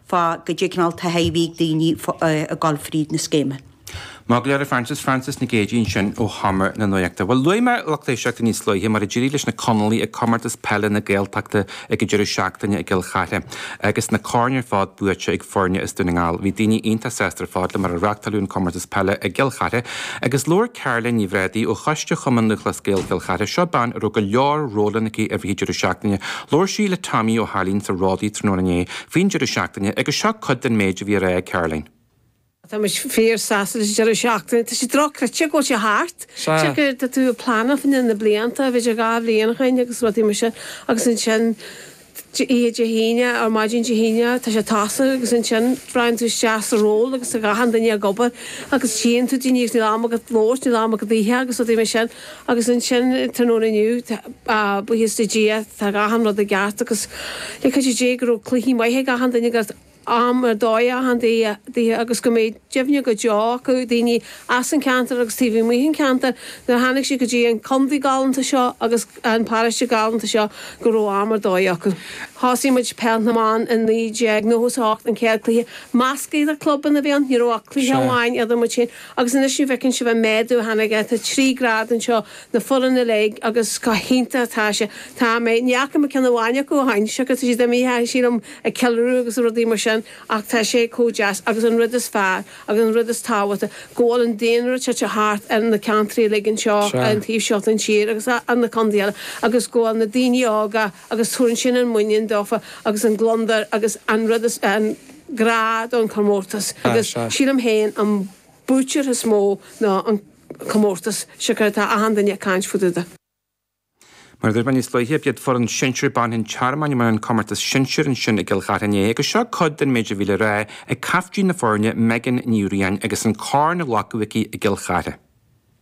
Fá goidé cineál tithe a bhí ag daoine ag gabháil fríd an scéim? Maith go leor, a Frances, Frances Nic Géidigh ansin ó Sheomra na Nuaíochta. Bhuel, luaigh mé a lucht éisteachta níos luaithe mar a d'éirigh leis na Conallaigh ag Comórtas Peile na Gaeltachta ag an deireadh seachtaine i gCill Chartha agus na coirn ar fad buaite ag foirne as Dún na nGall. Bhí daoine iontach sásta ar fad le mar a reachtáileadh an Comórtas Peile i gCill Chartha agus labhair Caroline Ní Bhrádaigh ó choiste Chumann Lúthchleas Gael Chill Chartha, seo bean a raibh go leor rólanna aici i rith an deireadh seachtaine Labhair sí le Damien Ó Dónaill sa Ródaí tráthnóna inné faoin deireadh seachtaine agus seo cuid den méid a bhí le rá ag Caroline. Tá muid fíor sásta leis an deireadh seachtaine. Tá sé dochreidte go bhfuil sé thart. Cheap mé tá tú ag pleanáil faoi le blianta, b'fhéidir dhá bhliain ó shoin agus rudaí mar sin agus ansin oíche Dé hAoine or maidin Dé hAoine tá sé tosaithe agus ansin braitheann tú isteach sa ról agus tá achan duine ag obair agus tchíonn tú daoine agus níl am agat labhairt, níl am agat ithe agus rudaí mar sin. Agus ansin tráthnóna inniu, buíochas le Dia, tá achan rud i gceart agus le cuidiú Dé go raibh cluichí maithe ag achan duine agus am ar dóigh ag achan duine agus go mbeidh cuimhní go deo acu, daoine as an ceantar agus taobh amuigh an ceantair, nuair a tháinig siad go dtí an contae galánta seo agus an paróiste galánta seo go raibh am ar dóigh acu. Thosaigh muid Peil na mBan i 1998, an chéad cluiche mná idir clubanna a bhí ann, ní raibh ach cluiche amháin idir muid féin Agus anois an bhfeiceann sibh an méadú a tháinig air, tá trí ghrád anseo, na foireann uilig agus comh hiontach atá sé. Tá mé, ní fhaca mé ceann amháin acu ó shin, tá siad imithe sílim ag ceiliúradh agus rudaí mar sin ach tá sé chomh deas agus an rud is fearr agus an rud is tábhachtaí go bhfuil an daonra tite thart ar na ceantraí uilig anseo ar an taobh seo den tír agus ar na contaetha eile agus go bhfuil na daoine óga agus tabharann sin an muinín dófa agus an gliondar agus an rud is an grá don chomórtas agus sílim féin an buaiteoir is mó nó an comórtas, siocair tá achan duine ag caint fá dtaobh de. Mar a dúirt mé níos luaithe, b'iad foireann sinsear ban an Tearmainn a bhain an comórtas sinsear ansin i gCill Chartha inné agus seo cuid den méid a bhí le rá ag caiftín na foirne, Megan Ní Riain, agus an corn á ghlacadh aici i gCill Chartha.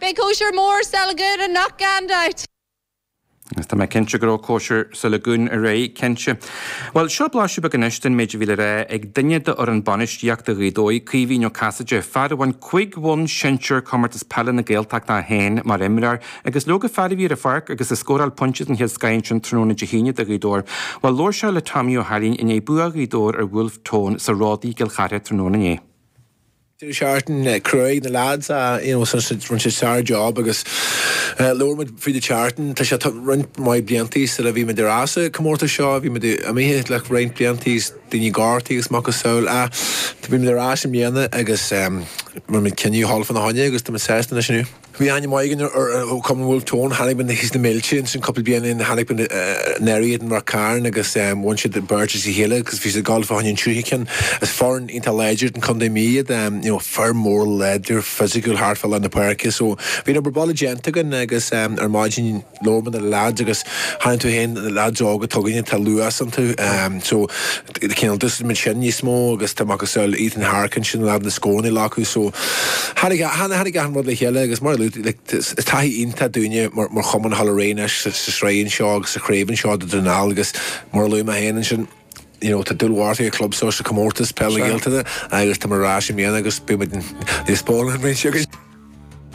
Beidh cóisir mór sa Lagoon anocht gan dabht! Agus tá mé cinnte go raibh cóisir sa Lagoon aréir, cinnte. Bhuel, seo blaiseadh beag anois den méid a bhí le rá ag duine de fhoireann bainistíochta Ghaoth Dobhair, Caoimhín Ó Casaide, fear a bhain cúig bhonn sinsear Comórtas Peile na Gaeltachta é féin mar imreoir agus leoga fear a bhí ar an pháirc agus a scóráil pointe den chéad scoth ansin tráthnóna Dé hAoine do Ghaoth Dobhair. Bhuel, labhair sé le Damien Ó Dónaill i ndiaidh bua Ghaoth Dobhair ar Bhulf Tón sa Ródaí i gCill Chartha tráthnóna inné. I rith na seachtaine chruthaigh na leaids you know rinne siad sár job agus labhair muid faoi i rith na seachtaine tá sé roinnt maith blianta sula bhí muid ar ais sa comórtas seo bhí muid imithe le roinnt blianta daoine gortaithe agus a macasamhail ach bhí muid ar ais i mbliana agus rinne muid cinneadh go hiomlán fána choinne agus tá muid sásta anois inniu. Bhí aithne mhaith againn ar Cumann Bhulf Tón, chonaic muid thíos na mílte ansin cúpla bliain ó shin, chonaic muid anuraidh iad i Ráth Cairn agus bhain siad beirt as a chéile agus bhí siad ag gabháil fá choinne an tríú ceann. Is foireann iontach láidir de Chontae na Mí iad, you know, fear mór láidir, physical thart fá lár na páirce, so bhí an obair baile déanta againn agus ar maidin, labhair muid le na leaids agus chonaic tú féin leaids óga atá againne tá luas iontu so cineál d'úsáid muid sin níos mó agus tá macasamhail Ethan Harkin ansin le na scóranna a ghlacadh so tháinig tháinig tháinig achan rud le chéile agus mar a luaigh like is taithí iontach dúinne mar mar chumann thall araon anois sa sa sraith anseo agus sa chraobh anseo do Dhún na nGall agus mar a luaigh mé féin ansin you know tá dúil mhór ag an chlub seo sa comórtas peile na Gaeltachta agus tá muid ar ais i mbliana agus beidh muid níos báúil an bhliain seo